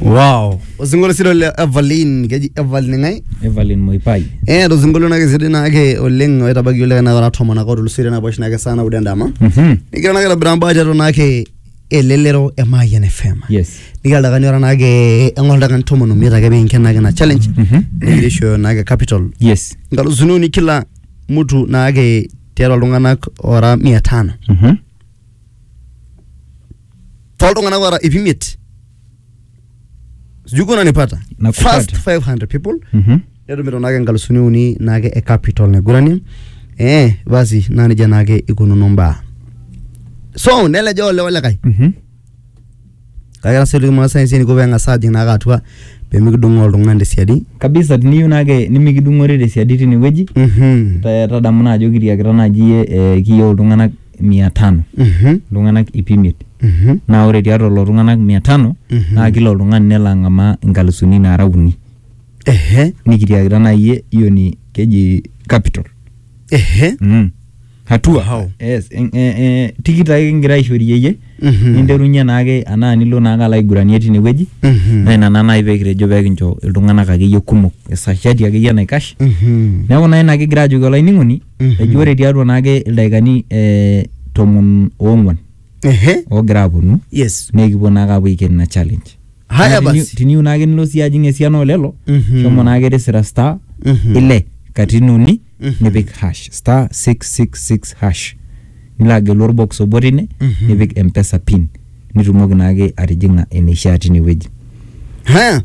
wow osinkolio sidai le evelyn keji evelyn ng'ae evelyn moipai eh to sinkolio nake sidai nake oleng oitabaki oleng na ora tomon ake otulusoitie nabo oshi nake saa naudo endama Mhm. nigira nake aitobira mbaa tiatua nake elelero e Mayian FM yes nigira dakani ora nake eng'ol dakani tomon omiet ake pinken nake na challenge Mhm. nigira aishooyo nake capital yes nkalusuni uni kila mtu nake tiatua iltung'anak ora mia tano Mhm. toltung'anak oota ip imiet sijui kuna nipata Nakupata. first 500 people Mhm. netumito naake nkalusuni uni naake e capital naigurani eh basi naa nejia naake ikununo mbaa so neleja ole olekae Mhm. kake tasa oliki masaa ensiai eniko peng'as ajing naake atua pemikidung'oo oltung'ani tesiadi kabisa tiniyieu naake nimikidung'ore tesiadi tinewueji Mhm. ta- tadamu naa ajo kitiakita naaji iyie eh, kiyieu iltung'anak mia tano Mhm. iltung'anak ip imiet Mhm. naa ore tiatua lelo tung'anak mia tano Mhm. naa kila oltung'ani nelo ang'amaa inkalusuni naara uni Ehe. nikitiakita naa iyie hiyo ni keji capital Ehe. mm. hatua Wow. yes. en- eh, eh, tikit ake kigira aishorie iyie Mhm. ninterunye naake anaa nilo naake alo aiguranie tine wueji Mhm. naa ina naa naaji pekitejo pekincho iltung'anak akeyie kumok esashati akeyie naikash Mhm. neeku naa ina kigira ajoki olainining'oni eji ore tiatua naake ildaikani eh, tomon oong'uan Ehe. oogira aponu Yes. naa ekipuo naake apuo aiken ina challenge Haya Naa teni- basi. teniyieu naake nilo siyie ajing esiana olelo Mhm. shomo naake tisira star Mhm. ile katitin uni Mhm. nipik hash star 666 hash nilo agelu orbox obo tine Mhm. nipik empesa pin nitumoki naake atijing'a eneishaa tinewueji Haya.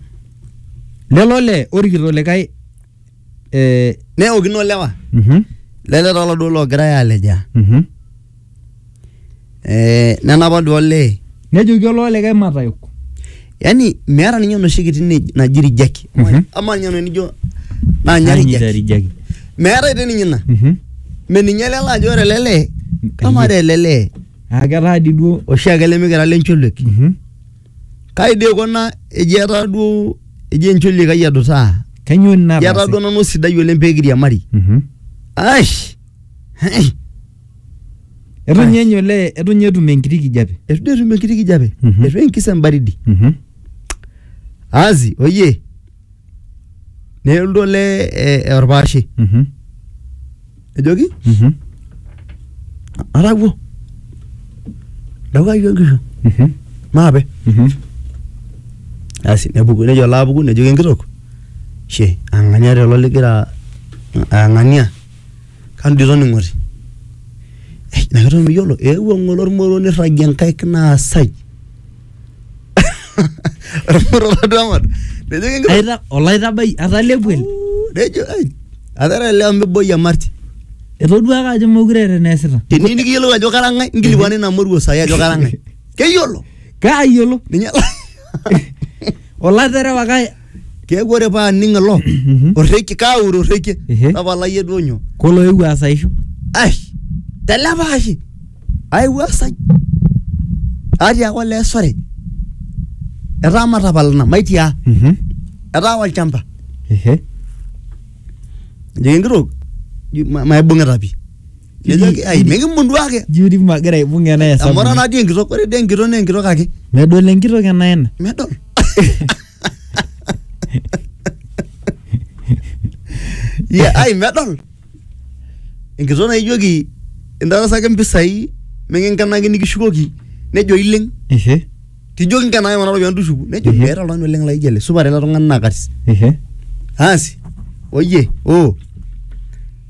lelo le orikito likae eh, neokino lewa Mhm. lele taa oladuo logirae alejaa Mhm. eh, nenapa duo olee nejoki oloo likae matayok yani meeta ninye enoshi kiti ne- naji rijaki Mhm. ama ninye eno nijo nanya rijaki rijaki meetae te ninye ina Mhm. meninye lele ajo ore lele kama ore lele aa ketaa di duo oshiake lemikira lencholuek Mhm. Kai dii ikuna eji etaa duo eji encholi kai edutaa. Kanyoo ina Eji etaa nataase? duo nanu sidai oleng pee kiriamari. Mhm. Aish! Hei! Etu ninye enya olee, etu ninye etum enkiti kijape. Etu dii etum enkiti kijape. Mhm. Etu enkis embaridi. Mhm. Aasi, oyie. nelotu olee eh, orpaashe Mhm. ejoki Mhm. atawuo dawuayu enkishu Mhm. maape Mhm. asi nepuku nejo alo apuku nejoki enkitok she ang'ania telo ligira ang'ania kanu dii toning'oti Eh, ina kitok miyiolo eewuo ng'ole ormoro nirragie nkaik naasai Ormurrorratu amat. Nejo kingira. Aita olaitabai atalepuel. Nejo ai. Atara leo miboi amarti. Etoduaka ajo mokure eeta eneesita. Teni nikiyiolou ajo kara ng'ae, nkilikuani ina moruo sai ajo kara ng'ae. Keyiolo. Kaayiolo. Ninye. Olaterewaka keeku ore paa aning ilo Mhm. orrekie kaure orrekie Ehe. tapalayie duo nyoo kolo ewu asaisho ai telepaashe aiwuasai atiaka olee sore etaa matapalana maitia Mhm. etaa olchamba ehe ejoki enkitok "Ji- ma- maibung'ita pi nejoki ai mikimunduaki juri magira aibung ena amu ora hesabu nadii enkitok ore dii enkitok naa enkitok ake medol enkitok ena ena medol Ye, ai medol enkitoo naijoki intarasaki mpisai mikinkenaki nikishukoki nejo ileng Ehe, tijoki nkenaki kuna ropiyiani tushuku nejo Ehe. meeta oltung'ani oleng laijo ele supat ele tung'ani naa katis ehe. aasi oye oo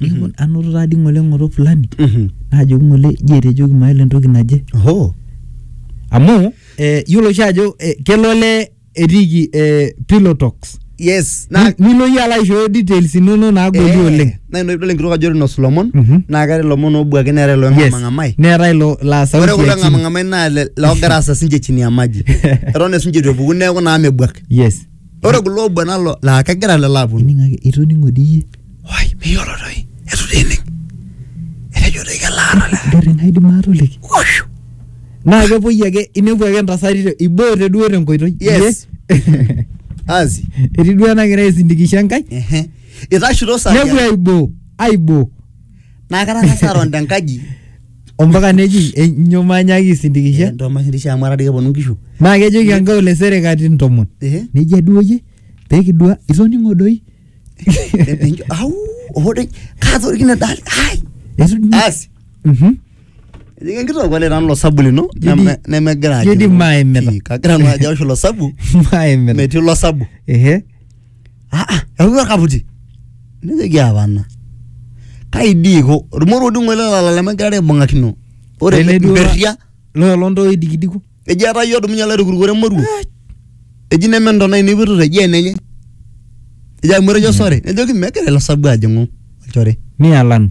Nikimpot, anoto taadi ng'ole ng'oto fulani Mhm. naajoki ng'ole ji etejoki maele entoki naje Oho. amu eh, yiolo oshi ajo eh, kelo olee etiiki eh, pillow talks Yes. Ni- Naa nilo iyie alo aishooyo details inono naagoli Eh, oleng Naa ina idol enkitok ajo inosu ilomon. Mhm. Naa keetae ilomon oobuaki neetae Yes. iloong'amang'amai. neetae ilo laa sauti Ore kulo ya chini. ng'amang'amai naa le- loogira aasa sinche chini ya maji. Eton esinche eitu epuku neeku naa mebuak. yes ore kulo obo nalo laa kegira lelo aponu ining ake itoning'o dii iyie wai miyiolo toi etu dii ining etejo toi kelaata le garri naidim atoliki washu naa kepuoi ake inepu ake intasati te- iboote duo tenkoitoi Yes. Iye. asi etii duo enagira aisindikisha enkai ehe itashuto saa nepuo tiatua- aiboo aiboo naa katang'asa aton tenkaji ompaka neji enyo manyaki isindikisha Nto maisindisha amu atadii keponu nkishu. naa kejoki enkae ole sere katitin ntomon Ehe. nejia duo yie pee kidua itoning'o doi Enjo au ohode katorikine dali. Ai. Etu- Asi. Mhm. Ejoki enkitok ole nanu lo sabu lino Jodi- neme- nemegira ajo. Jodi maaimita. Ii, Kagira nanu ajo aosh lo sabu Maaimina. metii lo sabu. Ehe. aa eyaua orkaputi nejoki apana kai dii iko ormoruo dung'o ele lala lemegirara aibung'akino ore Ele duo- mperria loo lontoo idikidiku eji etaa yie odumunye alo aitukurukore emoruo eji neme ntona ainei ipoitoto eji enenye eji amu etejo sore nejoki megira ilo sabu ajing'u olchore nialanu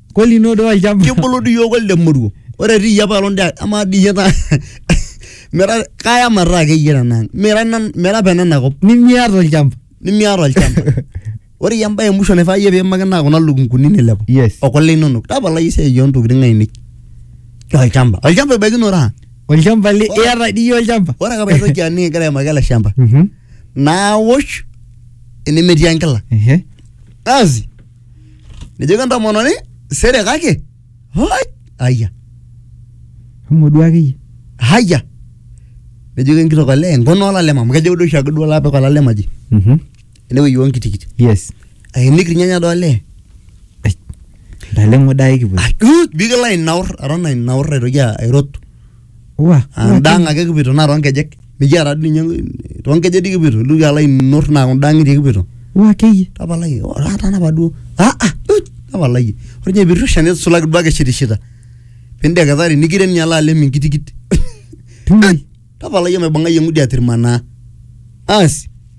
Kweli ino duo olchamba. kibulu dii iyiook olde moruo ore tii iyie apailong dii amaa dii iyie taa mira kaya mataa akeyie tenang mira nan- mira pena nakop Nimiata olchamba. nimiata olchamba ore iyie embae emusho naifaa iyie piimaki naa kuna lukunguni nilepu Yes. okule inonok tapalai esiai oontokitin ainei olchamba olchamba ebaikino raa Olchamba li Ora- iata dii iyie olchamba. ore ake paitoki aning egira aimaki ele shamba Mhm. naawosh enemetii enkila Ehe. asi nejoki entomononi sere kake hoi aya Shomo duo akeyie. haya nejoki enkitok olee nkona olalem amu kejo duo oshiake duo lapik olalem aji Mhm. enewueji onkitikiti Yes. ainik irnyanya doo olee Naleng'o dai kipuo. Ai, uh, bigila ainaur aton ainaur aitoki airot Wa. Endaang ake kipuito naa toonkejek. Mikiata dii ninye toonkejek dii kipuito. Ilotu alo ainur naa kunda ang'itie kipuito. Wa akeyie. Tapalaki aa tanapa duo. Aa aa uch tapalaki. Ore ninye piirrusha nisulaki duo ake ishitishita. Pindeketari nikirem ninye alo alem enkitikit. Uch tapalaki omaibung'ai eng'udi atirmanaa. Aasi.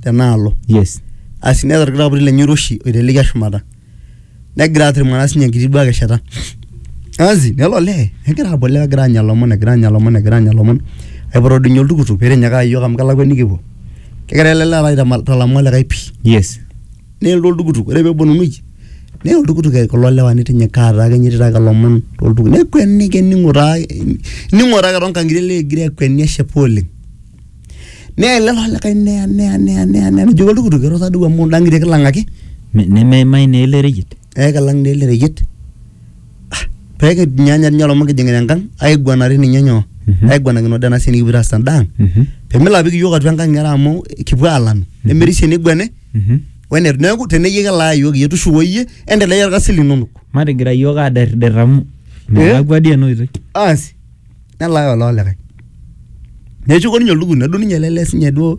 tenaalo yes asi neeta orkitapuri lenye oiroshi oitelekia shumata negira atirmana sinye enkiti duake shata asi nelo olee negira apuo olee egira anya ilomon egira anya ilomon egira anya ilomon aipoto doi ninye oltukutuk pitinyikaka iyiok amu kelakua enikipuo kegira ele lee alo aitama- aitalamu olikae pii yes nelotu oltukutuk ore peponunui neya oltukutuk eh, kulo lewa nitinyikaa taa akenye etii taake ilomon toltukutuk nekueniki ening'o taa ening'o taa ake tonkang'itie elee egira akueni eshipa oleng. Neya ele likae neya neya neya neya neya nejoki oltukutuk irura duo amu indang'itie kilang ake. Me- nemeimai naa ele reyiet Ee kilang naa ele reyiet. Ah, pee kinyaanya ninye olomon kijing'ita enkang aiguanare ninye nyoo? Mhm. Aiguanakino dii ena siai nikipuoito aas tenda ang. Mhm, Pee melo apik iyiook atua enkang ng'era amu kipuo aalanu. Nemerisio eniguani mhm. wene neeku teneyie kelaa iyiook iyie tushuko iyie endelea irkasin linonok. matigira iyiook aderder amu melakua dii ena oitoi Asi. nelaaya ololikae neshuko ninye oltukutuk nedou ninye ele lee sinye duo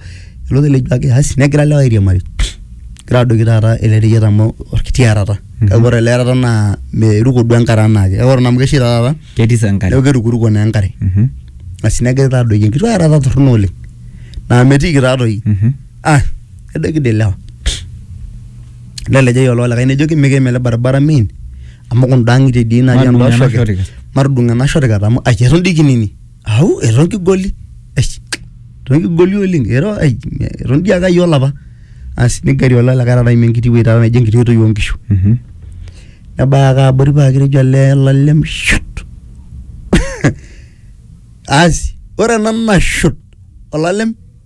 ele otelejuaki asi negira lewa airiamari egira adoiki taata ele reyiet amu orkiti arata kake ore ele arata naa meiruko duo enkare anaake kake ore naa amu keshaita taata ketii sa enkare neeku kerukuruko naa enkare Mhm, asi negira taa adoiki enkiti arata torrono oleng naa metiiki taatoi mhm. ah nedoiki dii ilewa nelejai ololikae nejoki mikiim ele baribara miin amu kunda ng'itie dii natii Matudung' enda ena shoket shotikat. matudung ena shotikat amu ai eton dii kinini au eton kigoli ai eton kigoli oleng eton ai eton dii ake ayiolo apa asi nigeri ola likae taata aimie enkiti wueji taata naijo enkiti oitoi oonkishu Mhm. nebaya ake abori paa kitejo ele lalem shut asi ore ena nashut olalem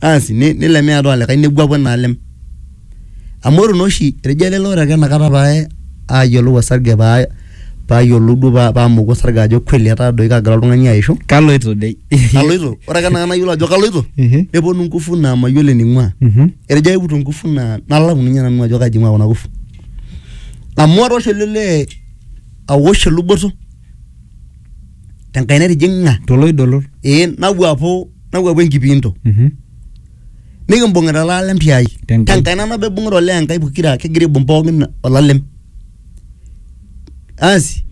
asi ni- nilemi atua olikae nepuapuo naa alem amu ore naa oshi etejo ele ore ake enakata pae ayiolou osarge paa payiolou duo pa- pamoku osarge ajo kweli etaa doi kagira oltung'ani aishu kaloito dei kaloito ore ake enakata nayiolou ajo kaloito Ehe. neponu ngufu naa mayiolo ening'ua Mhm. etejo aiputu ngufu naa nalau ninye nanu ajo kaji ing'ua kuna kufu amu atoosho ele lee awosh eluboto tenkaina etijing'a toloidolo ee nawuapu nawuapu enkipiinto Mhm. nikimbung'ita olalem tiai Tenkai. tenkaina nabo ibung'ita olee enkai pokira kigira aibung pookin olalem asi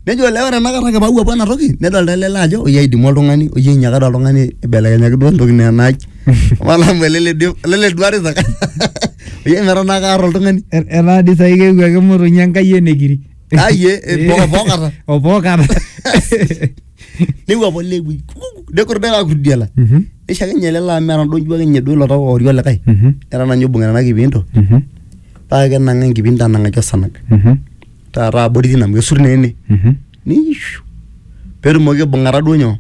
nejo olee ore enakata ake pawuapu ena toki nedolta ele lee ajo oyie aidimu oltung'ani oyie inyiakata oltung'ani ibelekenyaki duo entoki naa enaai olamu ele le dio- ele le duare saka oyie metaa naa kaarr oltung'ani Er- etaa dii saai keewuo ake motonyi enkai enekiri aye bokata obokata newuapo lewi nekor dai kakuridiala nisho akenye ele laa meeta ndonjua akenye duo ilo tau oori olikae era nanye oibung'ita ena kipinto paa kenang'a enkipinto anang'aki osanag taata abori tina amu kesur naa ene niishu petumoki aibung'ata duo nyoo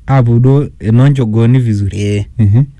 apuo duo enoonchogooni vizuri ee Mhm.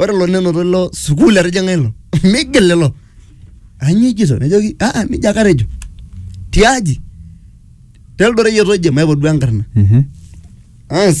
ore ilo nenoto ilo sukuul etijing'a ilo migil ilo anyoo ijito nejoki aa nijia ake atejo tiaji teldoreyiet oje maipot duo enkarna Mhm. Asi.